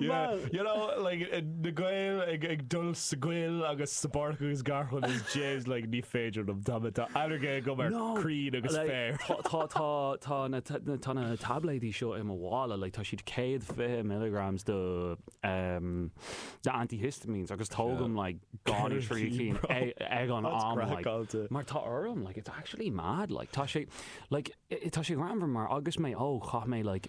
na Gaeil ag dul sa gcoill agus sa bpáirc agus garchlann is dude like ní féidir liom tá mé tá ailléirge agam ar crainn agus féar. Tá tá tá na tá na taibléidí seo i mo mhála like tá siad 120 milligrams de um de antihistamines agus tógaim like gan an trí cinn ag an am like mar tá orm like it's actually mad like tá sé like tá sé greannmhar mar agus mé óg chaith mé like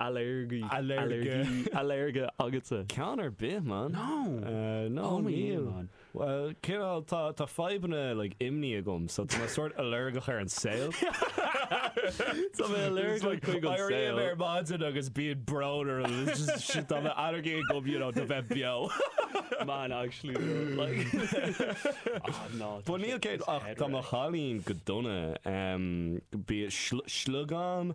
Ailléirge, ailléirge, ailléirge agatsa? Ceann ar bith, man. No! No, níl, man. Bhuel, cén fáth? Tá, tá fadhbanna, like, imní agam, so tá mé sórt ailléirgeach ar an saol. Tá mé ailléirgeach chuig an saol. Éirím ar maidin agus bíonn brón orm, it's just, shit, tá mé ailléirge agam, you know, do bheith beo. Man, actually, though, like, ah, no. But níl céad, ach tá mo chailín go dona, em, bíonn sliogán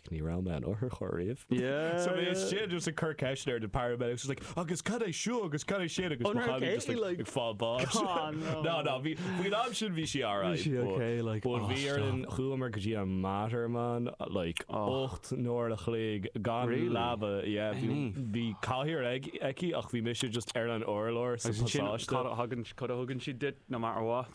Ach ní raibh mé in otharcharr ariamh. So bhí sé just ag cur ceisteanna ar na paramedics, just like agus cad é seo agus cad é sin agus mo chailín just like ag fáil báis. No, no, bhí, faoin am sin bhí sí alright. Bhí sí okay, like, oh stop. Bhí ar an, chuamar go dtí an Mater, man, like ocht n-uaire an chloig gan leaba, yeah, bhí cathaoir aici ach bhí mise just ar an urlár sa phasáiste. Cad a thugann siad duit no matter what?